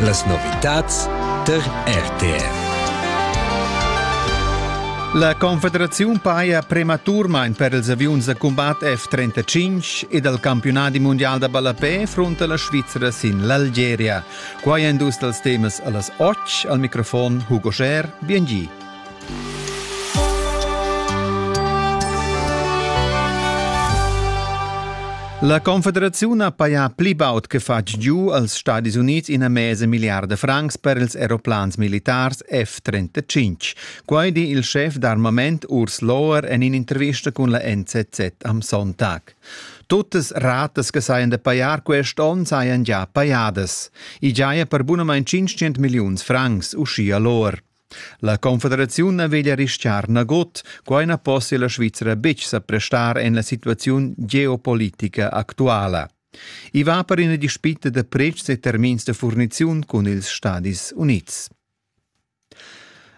Las novitads tar RTR. La Confederaziun paja prematurmain per ils aviuns da cumbat F-35 e dal campiunadi mundial da ballapè frunta la Svizra sin l'Algeria. Quai èn dus dals temas a las 8. Al microfon Hugo Scher, biengì. La Confederaziun ha pajà pli baud che fatg giu als Stadis Unids ina mesa milliarda francs per ils aeroplans militars F-35. Quai di il schef d'armament Urs Lohr en in'intervista cun la NZZ am Sonntag. Tuttas ratas che sajan da pajar quest onn sajan già pajadas. I giaja per bunamain 500 milliuns francs, uschia Lohr. La confederaziun na veglia rischiar nagut, quai na possia la Svizra betg sa prestar en la situaziun geopolitica actuala. I va per ina dispita da pretschs e termins da furniziun cun ils Stadis Unids.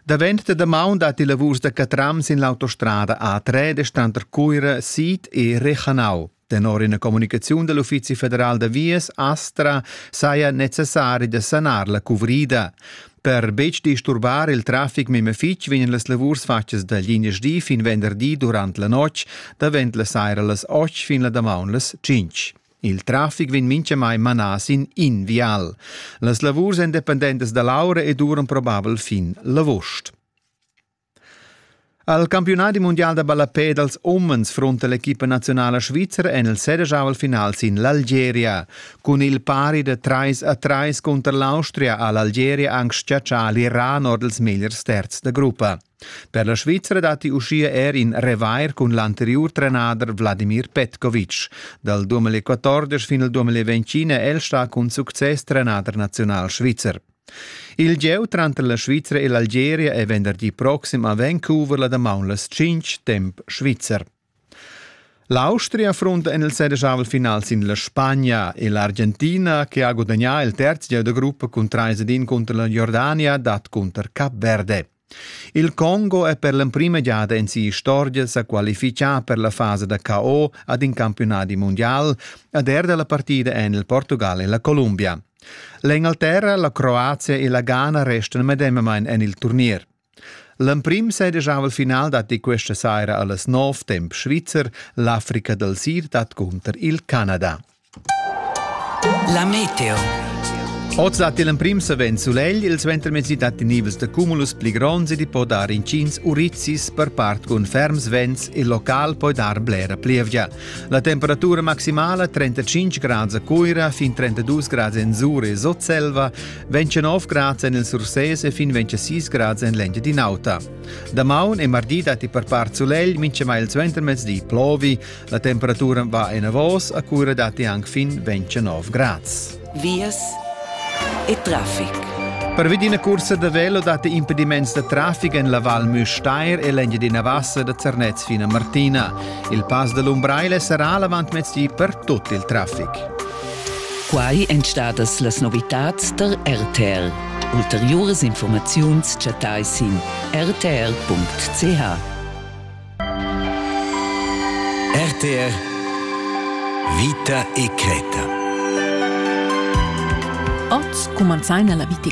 Davent da damaun dat i lavurs da catrams in l'autostrada A3 de Standard Cuira sid e Rechanau. Tenor ina communicaziun dell Uffizi federal da vias Astra saja necessari da sanar la cuvrida. Per betg disturbar il traffic meme fitg vegnan las lavurs fatgas da linjas D fin venderdi durant la notg, davent la saira las 8 fin la damaun las 5. Il traffic vegn mintgamai manà sin in vial. Las lavurs independentas da Laura e duran probabel fin l'avost. Al campiunadi mundial da ballapè dals umens frunta l'equipa naziunala svizra en il sedegiavel final sin l'Algeria. Cun il pari da trais a trais cunter l'Austria ha l'Algeria anc chatschà l'Iran or dals megliers terzs da gruppa. Per la Svizra datti uschia er in revair cun l'anteriur trenader Vladimir Petkovic. Dal 2014 fin al 2020 è el stà cun success trenader naziunal svizzer. Il gieu tranter la Svizra e l'Algeria è venderdi proxim a Vancouver la damaun las tschintg temp svizzer. L'Austria frunta en il sedischavel final sin la Spagna e l'Argentina, che ha gudagnà il terz gieu da gruppa cun 3 ed 1 cunter la Jordania, dat cunter Cap Verde. Il Congo è per l'emprima giada en si'istorgia sa qualifichà per la fasa da KO ad in campionadi mondial ed er dalla partida en il Portugal e la Columbia. L'Engalterra, la Croazia e la Ghana restano medemamain en il turnier. L'emprim sedegiava il final datti questa saira a las 9 temp svizzer l'Africa del Sid dat cunter il Canada. La meteo. Oz dat il emprim savens sulegl, il suentermezdi datti nivels da cumulus pli gronds ed i po dar intgins urizis per part cun ferms vents, il local poi dar blera plievgia. La temperatura maximala 35 grads a Cuira, fin 32 grads en Zuri e Sotselva, 29 grads en il Sursese e fin 26 grads en l'Engia di Nauta. Damaun e mardi datti per part sulegl, minchemai il suentermezdi plovi, La temperatura va enavos a cura datti anche fin 29 grads. Vias e traffic. Per vidina cursa da velo datti impediments da traffic en la Val Müstair e l'Engia di Navassa da Zernez fino a Martina. Il pass da l'Umbraile sarà l'avantmezdi per tutto il traffic. Quai èn stadas las novitads der RTL. Ulteriuras informaziuns chattai sin rtl.ch. RTR Vita e cretta. Oz cumanzaina la vita